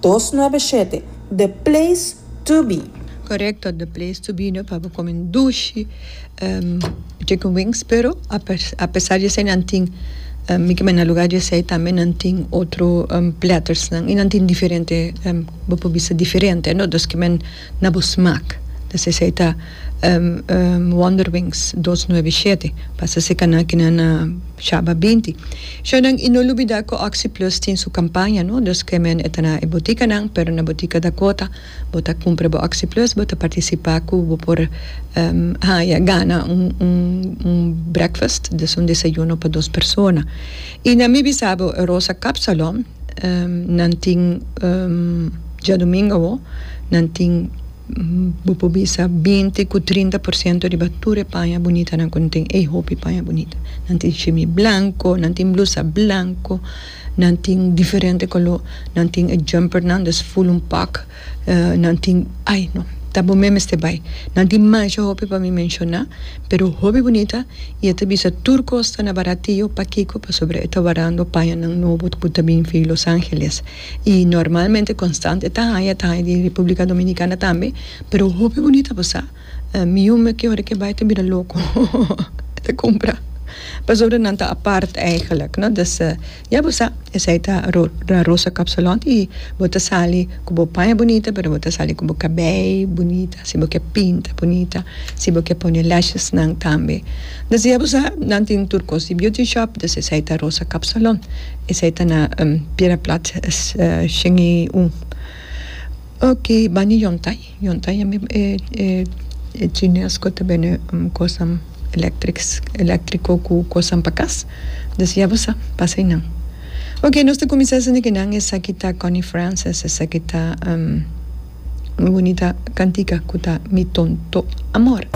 dos nuebe shete, The Place to Be. Correcto The Place to Be no paba come un dushi chicken wings pero a pesar di esey nan tin mi kima na lugar di esey tambe nan tin otro platters nan y nan tin diferente bo por bisa diferente no dos kimen. na bo smak, ta sesa e ta Wonderwings dos nuebe shete, pasa se kaná kina na shaba binti. Shornan i no lubidá ku Oxi Plus tin su kampaña no, dus ke men e ta na e botikanan, pero na botika Dakota bo ta kumpra bo Oxi Plus bo ta partisipá ku bo por haya gana un breakfast, dus un desayuno pa dos persona. I na mi bisa bo Rosa Kapsalon nan tin djadumingu awo nan tin bo por bisa binti ku trinta por siento riba tur e paña bunitanan ku nan tin ei hopi paña bunita nan tin shimi blanko nan tin blusa blanko nan tin diferente koló nan tin e jumpernan des ful un pak. Nan tin, ai no, ta bo me mester bai. Nan tin masha hopi pa mi menshona, pero hopi bunita i e ta bisa tur kos ta na baratio. Pakiko? Pasobra e ta warando paña nan nobo ku ta bin fi Los Angeles. I normalmente konstant e ta haña, e ta haña di Republika Dominikana tambe, pero hopi bunita bo sa. Mi yuma ki ora ke bai ta bira loko, e ta kumpra, pasobra nan ta apart, eigenlijk, no. Ya bo sa, esei ta La Rosa Kapsalon i bo ta sali ku bo paña bunita pero bo ta sali ku bo kabei bunita si bo ke pinta bunita si bo ke pone lashesnan tambe entonces ya bo sa nan tin tur kos di beauty shop entonces esei ta Rosa Kapsalon esei ta na Piedra Plat shen i un oke bani yontai. Yunta yami e e chines cu ta bende cosan electrico cu cosan pa cas diz ya bo sa pasa y nan ok nos ta cuminsa sindi kinan esaki ta Connie Francis esaki ta muy bonita cantica cu ta mi tonto amor.